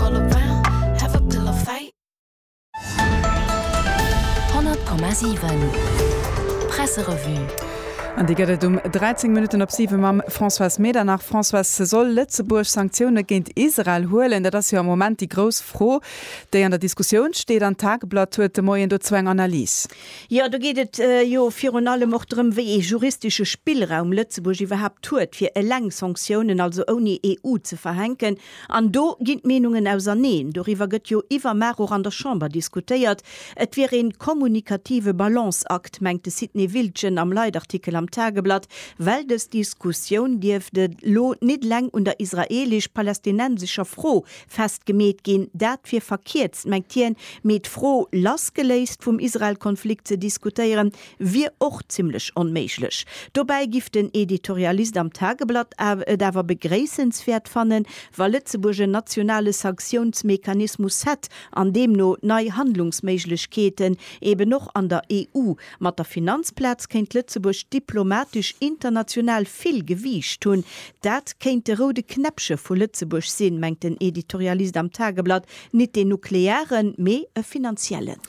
all around have a pill of fate. 100,7 Presserevue. An déi gëtt et um 13 Minutten op 7 mam Françoise Medernach. Françoise, soll Lëtzebuerg Sanktioune géint Israel huelen? Dat ass jo am Moment déi grouss Fro, déi an der Diskussioun steet. An d'Tageblatt huet de Moien dozou eng Analys. Jo, do geet et jo virun allem och drëm, wéi ee juristesche Spillraum Lëtzebuerg iwwerhaapt huet, fir eleng Sanktiounen, also ouni EU, ze verhänken. An do ginn d'Meenungen auserneen. Doriwwer gëtt jo iwwermaach och an der Chamber diskutéiert. Et wier een kommunikative Balanceakt, mengt de Sidney Wiltgen am Leitartikel am Tageblatt, well dës Diskussioun dierft elo nit leng un der israeelesch-palästinensescher Fro festgemeet ginn. Dat wier verkierzt, mengt hien, mee d'Fro lassgeléist vum Israel-Konflikt ze diskutéieren, wier och zimmlech onméiglech. Dobäi giff den Editorialist am Tageblatt et awer begréissenswäert fannen, wa Lëtzebuerg en nationale Sanktiounsmechanismus hätt an deemno nei Handlungsméiglechkeeten eben och an der EU. Mat der Finanzplaz kéint Lëtzebuerg diplomatesch international vill Gewiicht hunn. Dat kéint de roude Knäppche vu Lëtzebuerg sinn, mengt den Editorialist am Tageblatt. Nit deen nuklearen, mee e finanziellen.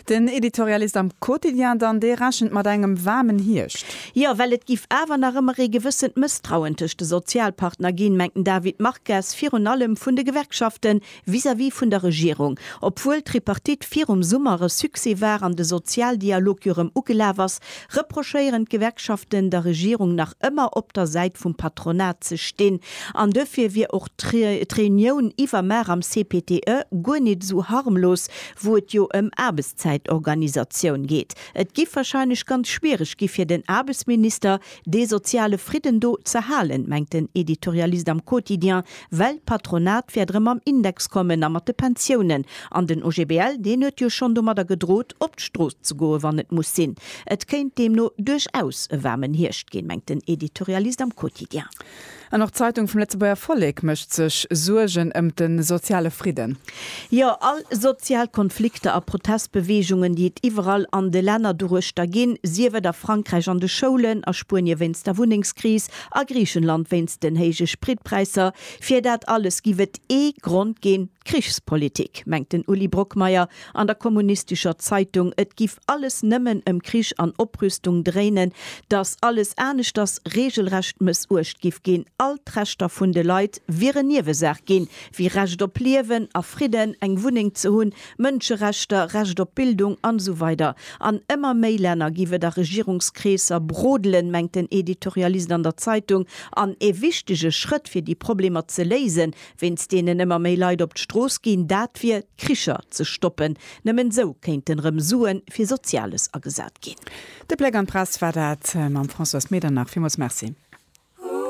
Den Editorialist am Quotidien dann, dee rechent mat engem waarmen Hierscht. Jo, well et giff awer nach ëmmer ee gewëssent Mësstrauen tëscht de Sozialpartner ginn, mengt den David Marques, virun allem vun de Gewerkschaften vis-à-vis vun der Regierung. Obwuel d'Tripartite virum Summer e Succès war an de Sozialdialog jo rëm ugelaf ass, reprochéieren d'Gewerkschaften der Regierung nach ëmmer op der Säit vum Patronat ze stinn an duerfir wier och d'Reunioun iwwermaar am CPTE guer nit esou harmlos, wou et jo ëm Aarbechtszäitorganisatioun geet. Et giff wahrscheinlech ganz schwiereg gi fir den Aarbechtsminister dee soziale Fridden do z'erhalen, mengt den Editorialist am Quotidien Well d'Patronat wäert erëm mam Index kommen a mat de Pensiounen. An den OGBL, deen huet jo schonn domadder gedrot, op d'Strooss ze goen, wann et muss sinn. Et kéint deemno duerchaus e waarmen Hierscht ginn, mengt den Editorialist am Quotidien. An och d'Zeitung vum Lëtzebuerger Vollek mécht sech Suergen ëm de soziale Fridden. Jo, all sozial Konflikter a Protestbeweegungen, déi et iwwerall an de Länner doruechter ginn, sief et a Frankräich an de Schoulen, a Spuenie wéinst der Wunnengskris, A Griichenland wéinst den héije Spritpräisser. Fir dat alles giff et ee Grond ginn, d'Krichspolitik, mengt den Uli Brockmeyer an der kommunistescher Zeitung. Et giff alles nëmmen ëm Krich an Oprüstung dréinen, dass alles aneschters regelrecht mëssuecht giff ginn. All d'Rechter vun de Leit wieren Niewesaach ginn, wéi Recht op Liewen a Fridden, eng Wunneng ze hunn, Mënscherechter, Recht op Bildung an esou weider An ëmmer méi Länner giff et a Regierungskreesser brodelen, mengt den Editorialist an der Zeitung. An ee wichtege Schrëtt fir déi Problemer ze léisen, wéinst deenen ëmmer méi Leit op d'Strooss ginn, dat wier d'Kricher ze stoppen. Nëmmen esou kéinten erëm Suen fir Soziales agesat ginn. De Bléck an d'Press war dat mam Françoise Medernach. Villmools Merci.